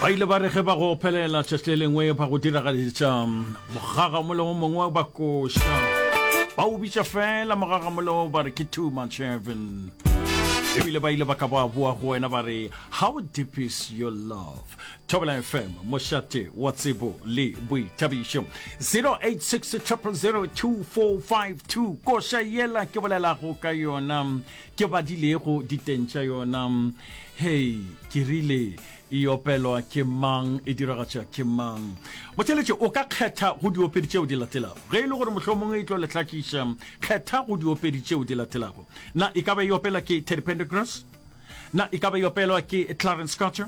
ba ile ba re ge ba go phelela tšatši le lengwe ba go diragaditša mogagamoleo mongwe ba koša ba o bitša fela mogagamoleo ba re ke two months heaven ebile ba ile ba ka ba boa go wena ba re how deep is your love thobela fm mošate wa tsebo le boithabišo 0860002452 koša yela ke bolelago ka yona Ke badilego diteng tša yona. Hei, ke rile, e opelwa ke mang, e diragatša ke mang? Botšeletše, o ka kgetha go diopedi tšeo di latelago. Ge e le gore mohlomongwe e tlo le hlakiša, kgetha go diopedi tšeo di latelago. Na e ka ba e opela ke Teddy Pendergrass? Na e ka ba e opelwa ke Clarence Carter?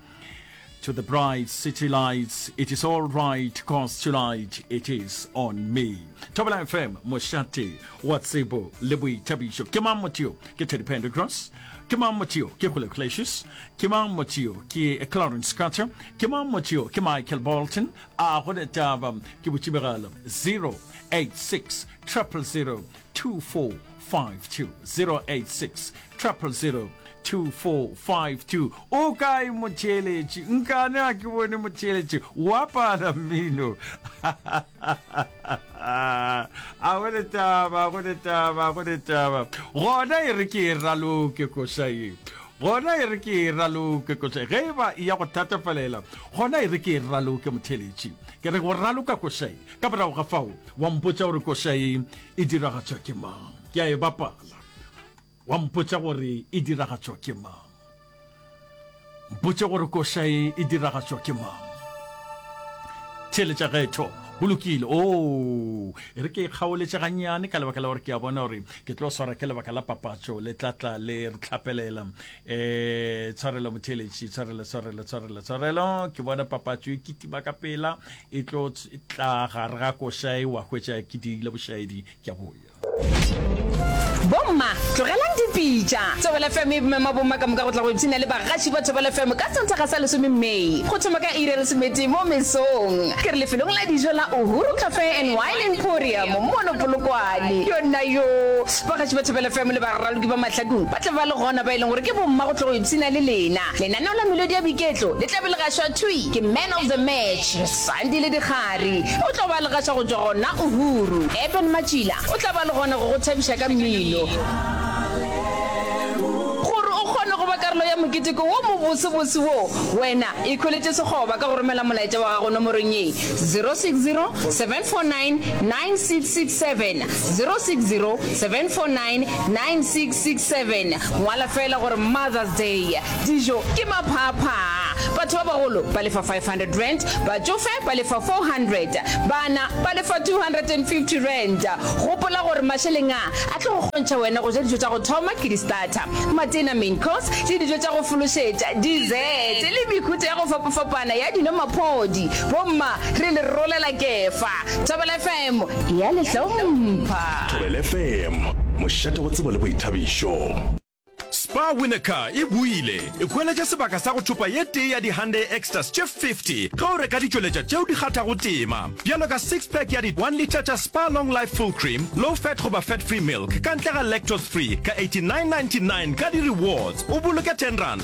To the bright city lights, it is all right, cause tonight it is on me. Thobela FM, Moshate, wa tsebo le boithabišo. Ke mang motho yo? Ke Teddy Pendergrass. Ke mang motho yo? Ke Julio Iglesias. Ke mang motho yo? Ke Clarence Carter. Ke mang motho yo? Ke Michael Bolton. A go le taba, ke botšibegalo 086 000 24 52-086-000-2452 o kae motheeletši nkane a ke bone motheeletši wa pala mmino a go le taba go le taba go le taba gona e re ke e raloke kosaye gona e re ke e raloke kosaye ge e ba e ya go thatafalela gona e re ke e raloke motheeletši ke re go raloka kosaye ka morago ga fao wa mpotsa gore kosaye e diragatšwa ke mang ke a e bapala wa mpotša gore e diragatšwa ke mang mpotše gore koša e e diragatšwa ke mang theletša ga etho go lokile o oh, e re ke e kgaoletše gannyane ka lebaka la gore ke a bona gore ke tlo swara ke lebaka la papatšo le tlatla le re tlhapelela e tshwarelo motheletši tshwarelo tshwarelo tshwarelo tshwarelo ke bona papatso e kitima ka pela e tlo tla gare ga košae wa hwetša ke dirile bošaedi ke a boya bomma tlogelang dipitša thobela fm e bomema bomma ka moka go tla go ipshina le bagaši ba thobela fm ka santaga sa lesome may go thoma ka iri ya lesometee mo mesong ke re lefelong la dijo la uhuru cafe and wine emporium mono polokwane yona yo bagaši ba thobela fm le baraloki ba mahlakong Tle ba le gona ba e leng gore ke bomma go tlo go ipshina le lena. Lenaneo la melodi ya boiketlo le tla be le gašwa thwi ke Man of the Match, Sandile Dikgari. O tlo ba a le gaša go tšwa gona Uhuru. Eben Matšila o tla ba le gona go go thabiša ka mmino. Gore o kgone go ba karolo ya moketeko wo mobosebose wo, wena ikhweletše sekgoba ka go romela molaetša wa gago nomorong ye, 060 749 9667, 060 7499667 Ngwala feela gore Mother's Day, dijo ke maphaphaa, batho ba bagolo ba lefa R500, batšofe ba lefa R400, bana ba lefa R250. Gopola gore mašeleng a a tlo go kgontšha wena go ja dijo tša go thoma ke di-starter, matena, main course, le dijo tša go fološetša, dessert, le mehuta ya go fapafapana ya dino, maphodi. Bomma re le rolela kefa. Thobela FM e a le hlompha. Thobela FM, mošate go tsebo le boithabišo. Spar Winner Car e buile e hweletša sebaka sa go thopa ye tee ya di-Hyundai Exters tše 50 ge o reka ditšweletša tšeo di kgathago tema, bjalo ka six pack ya di one litre tša Spar Long Life Full Cream, Low Fat goba Fat Free Milk ka ntle ga Lactose Free ka 89.99 ka di-rewards o boloke ten rand.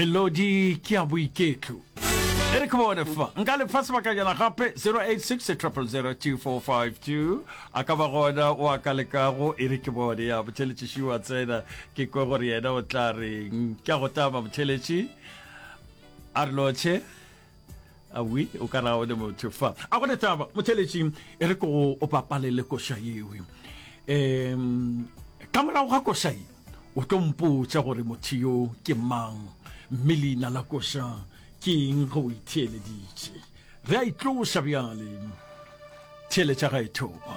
melodi ke ya boiketlo e re ke bone fa nka le fa sebakanyana gape 0860002452 a ka ba gona o a ka lekago e re ke bone ya botheletšiši wa tsena ke kwe gore yena o tla reng ke a go tama botheletši a re lotšhe awi o kana o le motho fa a go letaba motheletši e re ko o papalele koša yewe um ka morago ga koša ye o tlo mpotša gore motho yo ke mang mme leina la koša ke eng ge o itheeleditše re a itloša bjale theeletša ga e thoba